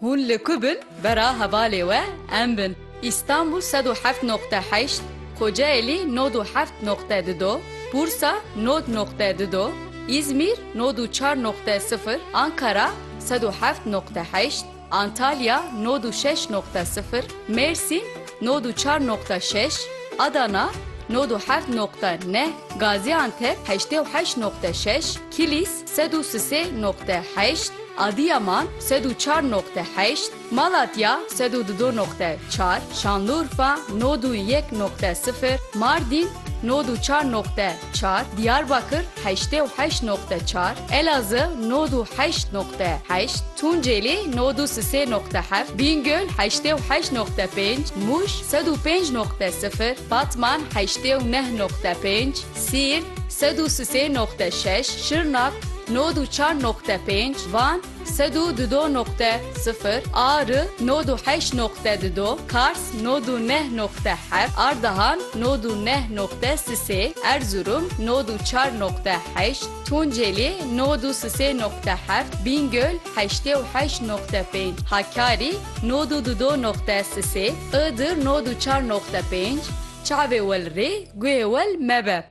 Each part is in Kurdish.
Hûn li ku bin bera hevalê we em bin. Îstanbûl sed û heft noqte heşt, Kocaelî nod û heft noqte di do, Bursa nod noqte di do, Îzmîr nod û çar noqte sifir, Ankara sed û heft noqte heşt, Antalya nod û şeş noqte sifir, Mêrsîn nod û çar noqte şeş, Adana nod û heft noqte neh, Gazîantep heştê û heşt noqte şeş, Kilîs, Sed û sisê noqte heşt, Adîyaman, sed û çar noqte heşt, Malatya, sed û dido noqte çar, Şanlurfa, nod û yek noqte sifir, Mardîn, nod û çar noqte çar, Dîyarbakir, heştê û heşt noqte çar, Elazığ, nod û heşt noqte heşt, Tuncêlî, nod û sisê noqte heft, Bîngöl, heştê û heşt noqte pênc, Mûş, sed û pênc noqte sifir, Batman, heştê û neh noqte pênc, Sîrt, sed û sisê noqte şeş, Şirnak, nod û çar noqte pênc, Van, sed û dudo noqte sifir, Ari, nod û heşt noqte dudo, Kars, nod û neh noqte heft, Ardahan, nod û neh noqte sisê, Erzurum, nod û çar noqte heşt, Tunceli, nod û sisê noqte heft, Bîngöl, heştê û heşt noqte pênc, Hakkari, nod û dudo noqte sisê, Iğdır, nod û çar noqte pênc, Çavê wel rê, guhê wel mebe.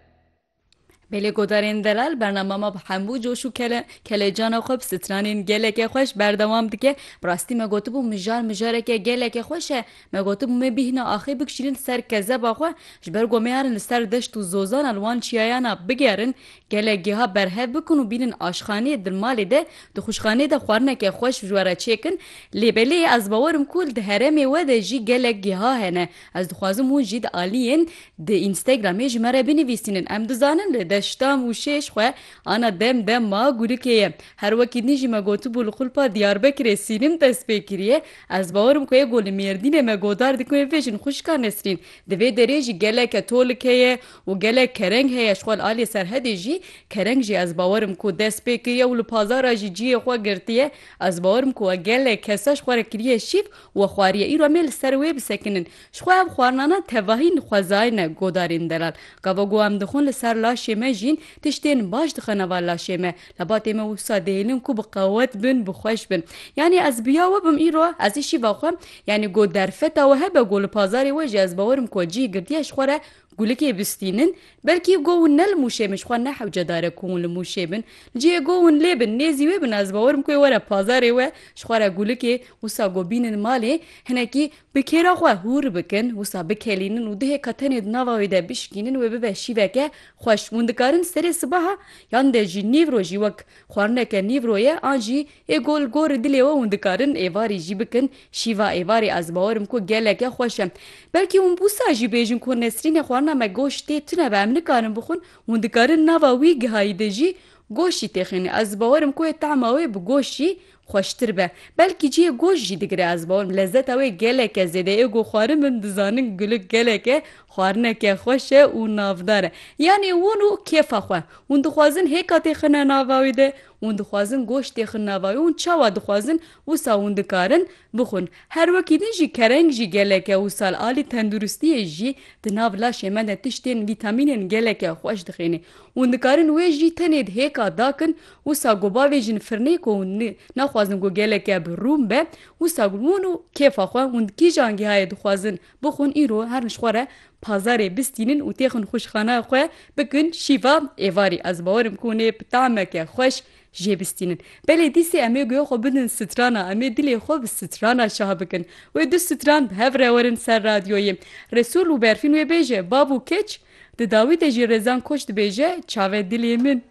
Belê Godarên Delal bernama me bi hemû coş û kele kelecana xwe bi stranên geleke xweş berdewam dike. Bi rastî me gotibû mijar mijareke geleke xweş e. Me gotibû me bîhna axê bikişînin ser kezeba xwe ji ber ku em ê herin li ser deşt û zozana li wan çiyayana bigerin gelek geha berhev bikin û bînin aşxaneyê di malê de di xwişxaneyê de xwarineke xweş ji we re çêkin lê belê ez bawer im ku di heremê we de jî gelek geha hene Ez dixwazim hûn jî di aliyên di Instagramê ji me re binivîsînin. Em dizanin lê deşta Mûşêj xwe ana dem dema gurikê ye. Her wekî din jî me gotibû li xulpa Diyarbekirê sînim dest pê kiriye. Ez bawer im ku ê ku li Mêrdînê me godar dikin wê bibêjin xwişka Nesrîn. Di vê derê jî geleke tolik heye û gelek kereng heye. Ji xwe li aliyê serhedê jî kereng jî ez bawer im ku dest pê kiriye û li pazara jî cihê xwe girtiye. Ez bawer im ku we gelek kesaş xwe re kiriye şîv We xwariye îro em ê li ser wê bisekinin. Ji xwe ev xwarnana tevahî nixwezayine godarên delal. Gava ku em dixwin li ser laşê me jîn tiştên baş dixe nava laşê me. Lebatê me wisa dihêlin ku bi qewet bin, bi xweş bin. Yanî ez bi ya we bim îro, ez jî şîva xwe, yanî ku derfeta we hebe ku li pazarê we jî ez bawer im ku cih girtiye ji xwe re Gulikê bistînin, belkî go hûn ne li Mûşê bin, ji xwe nehewce dare ku hûn li Mûşê bin, li cihê go hûn lê bin, nêzî wê bin, ez bawer im ku ê were pazarê we, ji xwe re gulikê, wisa go bînin malê, hinekî bi kêra xwe hûr bikin, wisa bikelînin û duhê ka tenê di nava wê de bişkînin wê bibe şîveke xweş. Hûn dikarin serê sibaha yan de jî nîvro jî wek xwarineke nîvro ye an jî Ê ku li gorî dilê we hûn dikarin êvarî jî bikin, şîva êvarê ez bawer im ku geleke xweş e. Belkî hûn bûsa jî bêjin ku Nesrînê xwarina me goşt tê tune be em nikarin bixwin, hûn dikarin nava wî gihayî de jî goşt jî têxînin ez bawer im ku ê tahma wê bi goşt jî xweştir be. Belkî cihê goşt jî digire ez bawer im lezeta wê geleke zêde ê ku xwarin min dizanin gulik geleke xwarineke xweş e û navdar e. Yanî hûn û kêfa xwe. Hûn dixwazin hêka têxine nava wî de Hûn dixwazin goşt tê xin nava wê hûn çawa dixwazin wisa hûn dikarin bixwin. Her wekî din jî kereng jî gelek e û sal alî tenduristiyê jî di nav laşê me de tiştên vîtamînên gelek e xweş dixênê. Hûn dikarin wê jî tenê di hêka da kin wisa ku bavêjin firnê ku hûn naxwazin ku gelek e bi rûn be wisa hûn û kêfa xwe hûn di kîjan gihayê dixwazin Bixwin îro her li xwe re pazarê bistînin û têxin xwişxanaya xwe bikin şîva êvarî. Ez bawer im ku hûn ê bi tameke xweş jê bistînin. Belê dîsê em ê guya xwe bidin strana, em ê dilê xwe bi strana şah bikin. Wê du stran bi hev re werin ser radyoyê. Resûl û Berfîn wê bêje, Bav û keç? Di dawî de jî Rezan Koç dibêje, Çave dilê min.